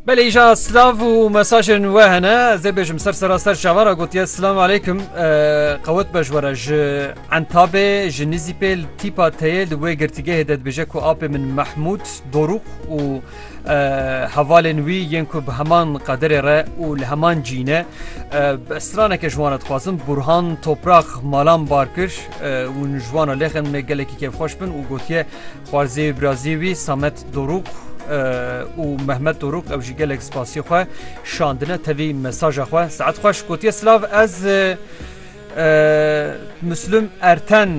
Belê îja silav û mesajên we hene ez ê bêjim ser sera ser çavara gotiye silam aleykum qewet be ji were ji entabê ji nîzîpê li tîpa teyê li wê girtîgehê de dibêje ku apê min Mehmûd dorûq û hevalên wî yên ku bi heman qederê re û li heman cîne straneke ji wan dixwazim Burhan topraq malan bar kir û ji wan lêxin me gelekî kêfxweş bin û gotiye Xwarzê û birazê wî Samet Dorûk û Mehmet Dorûk ew jî gelek spasî xwe şandine tevî mesaja xwe. Saet xweş gotiye silav ez Mislum Erten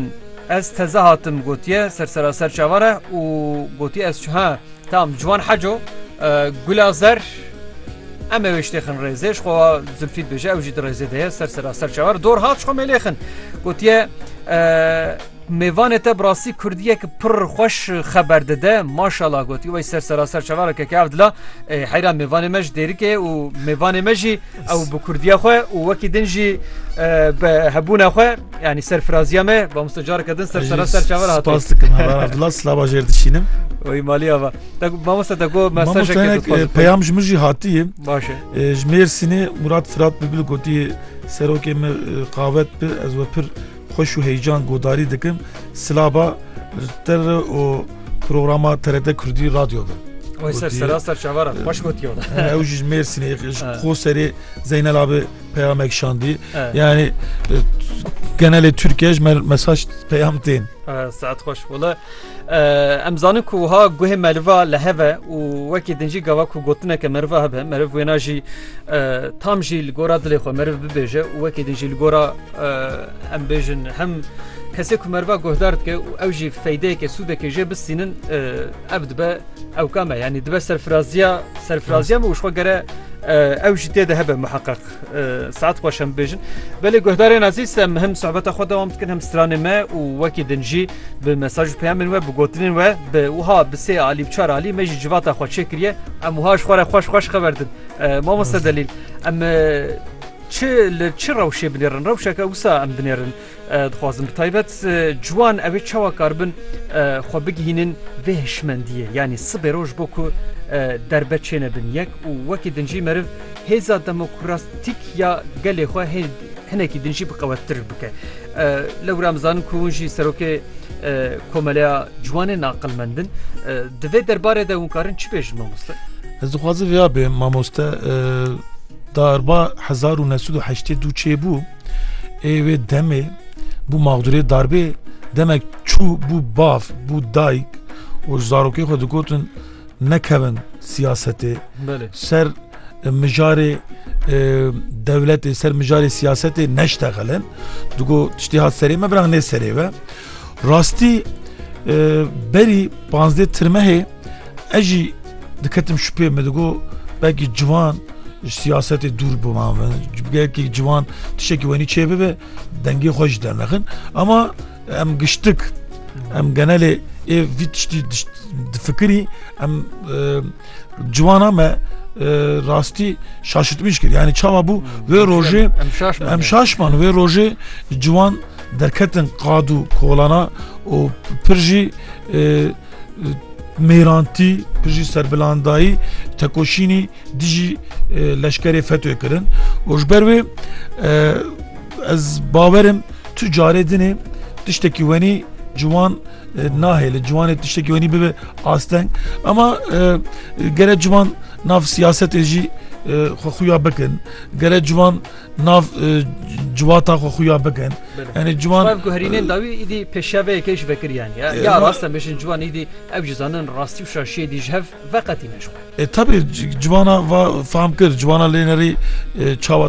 ez teze hatim gotiye ser seraser çavare û gotiye ez ha tam ciwan heco gula zer em ê wêştêxin rêzê ji xwe zilfît bêje ew jî di rêzê de ye ser seraser çavar dor hat ji xwe mêlêxin gotiye Mêvanê te bi rastî kurdiyek pir xweş xeber dide. Maşala gotî wey ser seraser çavara keke ev dila e, heyra mêvanê me ji dêrikê û mêvanê me jî ew bi kurdiya xwe û wekî din jî e, bi hebûna xwe yanî serfiraziya me mamoste careke din ser seraser çavara hatiye. Spas dikim heval Abdullah slava jêr dişînim. Wî maliya va. Te got, Mamoste te got Mamoste mesajeke hinek dixwazim. e, peyam ji min jî hatiye. Baş e. E, Ji Mêrsînê Murat Firat Bibli gotî serokê me e, qavet bi ez we pir Xweş û heyecan guhdarî dikim silaba te re û programa TRT Kurdî radyo de. Oy ser sera ser çavara xweş gotiyo. Ew ji Mêrsînê xo serê Zeynel abi peyamek şandî. Yani genelê Türkiye ji me mesaj peyam tên. Saet xweş wala. Em zanin ku wiha guhê meriva li hev e û wekî din jî gava ku gotineke meriva hebe meriv wêna jî tam jî li gora dilê xwe meriv bibêje û wekî din jî li gora em bêjin hem kesê ku meriva guhdar dike û ew jî feydeyeke sûdekê jê bistînin ev dibe ew kame yanî dibe serfiraziya serfiraziya me û xwe gere ew jî tê de hebe miheqeq. Saet xweş em bêjin. Belê guhdarên ezîz em him sohbeta xwe dewam dikin him stranê me û wekî din jî bi mesaj û peyamên we bi gotinên we bi wiha bi sê alî bi çar alî me jî civata xwe çê kiriye em wiha ji xwe re xweş xweş xeber din. Mamoste delîl em çi li çi rewşê binêrin rewşeke wisa em binêrin. Dixwazin bi taybet ciwan ew ê çawa karibin xwe bigihînin vê hişmendiyê yanî sibê roj bo ku derbe çêne bin yek û wekî din jî meriv hêza demokratîk ya gelê xwe hê hinekî din jî bi qewettir bike. Lewra mizanin ku hûn jî serokê komeleya ciwanên aqilmendin. Di vê derbarê de hûn karin çi bêjin mamoste? Ez dixwazim vêya bê mamoste darba hezar û nesûd û heştê dû çêbû. Ê wê demê bû mexdûrê darbê demek çû bû bav bû dayik û ji zarokê xwe digotin nekevin siyasetê ser mijarê dewletê ser mijarê siyasetê neştexelin digo tiştê hat serê me biran nê serê ve Rastî berî panzdeh tirmehê ez jî diketim şupê me digo belkî ciwan siyasetê dûr bûma min belkî ciwan tişekî wenî çê bibe dengê xwe jî dernexin ama em giştik em genelê ê vî tiştî difikirî em ciwana me rastî şaşitmiş kir yanî çawa bû wê rojê em şaşman wê rojê ciwan Derketin qad û kolana û pir jî mêrantî pir jî serbilandayî tekoşînî dijî leşkerê FETÖ'yê kirin û ji ber wê ez bawerim tu carê dinê tiştekî wenî ciwan nahê li ciwanê tiştekî wenî bibe asteng ama gere ciwan nav siyasetê jî xwe xuya bikin gere ciwan Nav civata xwe xuya bikin. Enê ciwan ku herînên dawî îdî pêşeveyekê ji vekiriyan ya ya rastem bêjin ciwan îdî ew jî zanin rastî û şaşiyê dî ji hev veqetîne ji xwe. E tabî civana va fam kir civana lê nerî çawa